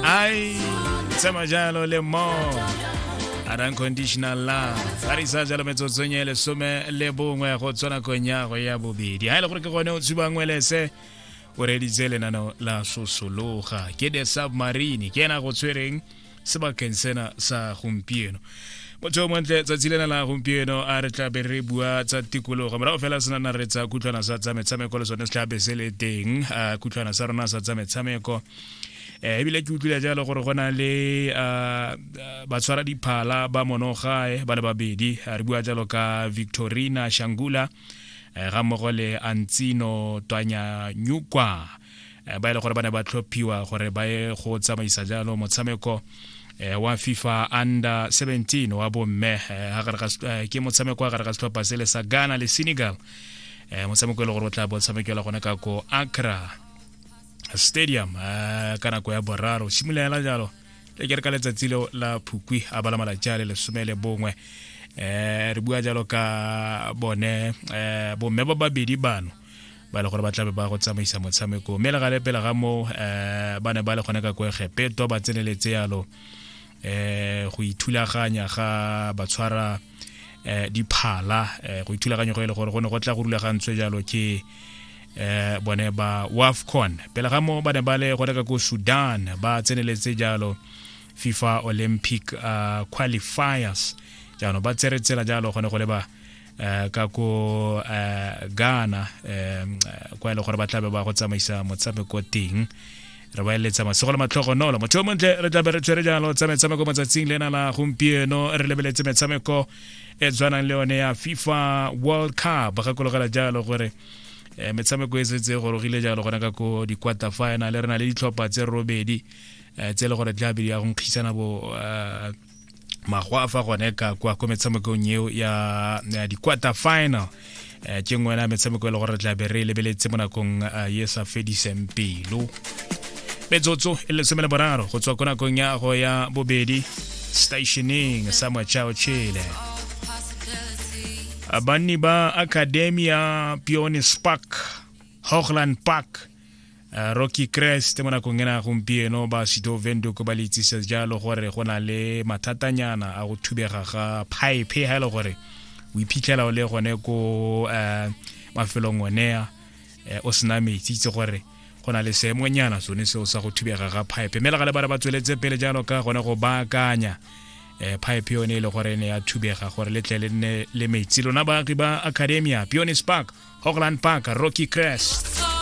ai tsema jalo le mo an unconditional love a re isa jalo metsotsong e lesome le bongwe go tswana kong ya go ya bobedi ga e le gore ke gone o tshubangwe lese o reditse lenano la sosologa ke the submarine ke ena go tshwereng sebakeng sena sa gompieno motho montle tsatsi lena la gompieno a re tlabe re bua tsa tikologo morago fela se nana re tsa kutlwana sa tsa metshameko le sone se tlabe se le teng a kutlwana sa rona sa tsa metshameko eh, ebile ke utlwile jalo gore go na le batshwara diphala ba monogae ba le babedi re bua jalo ka victorina shangula eh, ga mmogo le antsino twanya nyukwa eh, ba e le gore ba ne ba tlhophiwa gore ba ye go tsamaisa jalo motshameko eh, wa fifa under 17 wa bomme eh, ke motshameko wa gare ga setlhopha se le sa ghana le senegal motshameko e le gore o tla bo tshamekela gone ka ko acra stadium ka nako ya boraro simolola jalo le ke re ka letsatsi leo la phukwi a bala malatsi a le lesome le bongwe um re bua jalo ka bone um bomme ba babedi bano ba le gore ba tlabe ba go tsamaisa motshameko mme le gale pele ga moo um eh, ba ne ba le gone ka ko egepeto ba tseneletse yalo um go ithulaganya ga ba tshwara um diphala um go ithulaganya go e le gore go ne go tla go rulagantswe jalo ke um bone ba wafcon pele ga moo ba ne ba le gone ka ko sudan ba tseneletse jalo fifa olympic uh, qualifiers jaanong ba tsere tsela jalo gone go leba eh, ka ko eh, ghana eh, kwa e le gore ba tlabe ba go tsamaisa motshameko teng re ba eletsa masogo le matlhogonolo motho yo montle re tlabe re tshwere jalo tsa metshameko mo tsatsing le ena la gompieno re lebeletse metshameko e tshwanang le yone ya fifa world cup gakologela jalo gore eh, metshameko e setse e gorogile jalo gona ka ko di-quarter final re na le ditlhopha tse robedi eh, tse e le gore tlabe di ya go nkgisana bo eh, magwa a fa gone ka kwa ko metshamekong eo ya di-quarter final um ke nngwe ya metshameko e le gore re tla be re lebeletse mo nakong eh, e sa fediseng pelo metsotso e lesome le boraro go tswa ko nakong ya go ya bobedi stationeng sa mochao chile banni ba academia peone spark hogland park Eh, rocky crest mo nakong ena gompieno ba sido vendok ba le itsisa jalo gore go na le mathatanyana a go thubega ga pipe ha e le gore o iphitlhela o le gone ko eh, mafelong onea eh, o sena metsi itse gore go na le seemonyana sone seo sa go thubega ga pipe mme le ga le ba re ba tsweletse pele jalo ka gone go baakanya um pipe yone e le gore e ne ya thubega gore le tle le nne le metsi lona baagi ba academia peonis park hogland park rocky crest